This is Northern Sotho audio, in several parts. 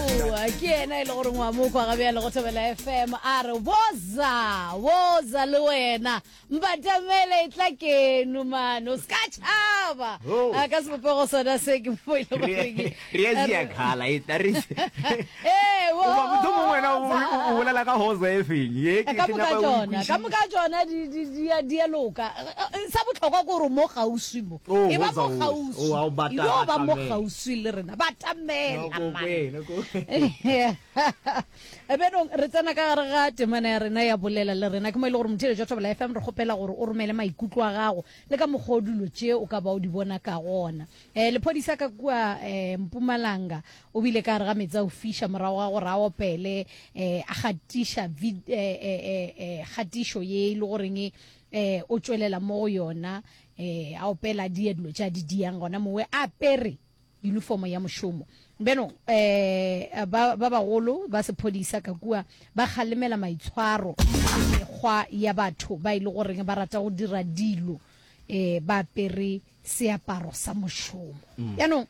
Oa, ke ena e le gore ngwa mokwa ga bjale go thobela fm a re boza boza le wena mbatamele e tla keno mane o se ka tšhaba Oh. a ka sebopego sona se ke mo e le goreng re ya sia khala e tla re Ee, wo- Oba motho mongwe wena o- woza. o- o bolela ka hoza e feng ye ke ka ke moka nyaka o tsona ka ikwešiše. moka tsona di- di- di a- di a loka Eh, eh, sa bohlokwa ke gore mo gauswi mo E ba mo kgauswi. E yo ba mo kgauswi le rena. Batamela man. Benong re tsena ka gare ga temana ya rena ya bolela le rena. Ke mo e le gore motheletši wa Thobela FM re kgopela gore o romele maikutlo a gago le ka mokgwa o dilo tše o ka ba o di bona ka gona. Eh lephodisa ka kua eh Mpumalanga o bile ka gare ga metsi a o fiša morago ga gore a opele eh a gatiša vid eh eh eh eh gatišo ye e le goreng eh o tšwelela mo go yona ee a opela a dia dilo tša di diang gona mowe a apere uniformo ya mošomo beno um eh, ba bagolo ba sephodisa ka kua ba kgalemela maitshwaro mekgwa ya batho ba e le goreng ba rata go dira dilo um ba apere seaparo sa mošomo mm. yaanong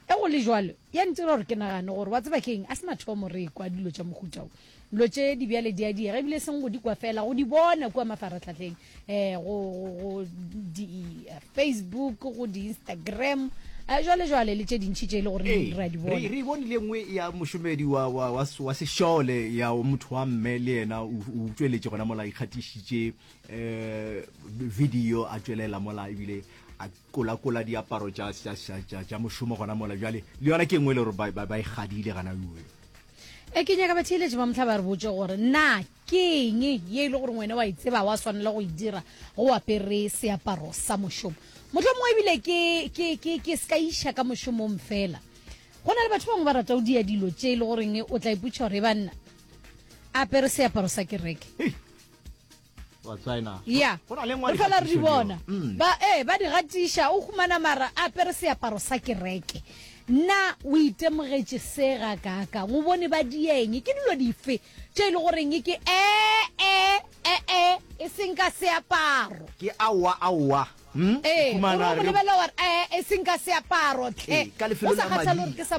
Ge go le bjalo, ya ntira gore ke nagane gore, wa tseba ke'ng, a se mathomo re ekwa dilo tša mohuta wo. Dilo tše di bjale di a diega, ebile e seng go di kwa feela, go di bona kua mafarahlahleng, ee, go, go, go di-Facebook, go di-Instagram, ee, bjalebjale, le tše dintši tše e le goreng Ee, re a di re, bona. re e bonile e nngwe ya mošomedi wa, wa, wa, s- wa sešole, ya o motho wa mme, le yena o, o utšweletše gona mola, a ikgatišitše, um video a tšwelela mola, ebile a, kolakola diaparo tša tša tša tša tša mošomo gona mola bjale le yona ke engwe le gore ba ba e gadile gana uwe e ke nyaka batheeletši ba motlha ba re botse gore na ke eng ye e le gore wena wa e tseba wa swanela go e dira go apere seaparo sa mošomo motlho mongwe ebile ke ke ke ke se ka iša ka mošomong fela go na le batho bangwe ba rata o dia dilo tše e le goreng o tla iputša gore e banna apere seaparo sa kereke ya re fela re di bona mm. ba ee ba di gatiša o humana mara a pere seaparo sa kereke nna o itemogetše se ga kaka o bone ba dieng ke dilo dife tše e le goreng ke ee ee ee e seng ka seaparo ke aowa aowa hmm? ee o lebele gore ee e seng ka seaparo tle o sa kgathale gore ke sa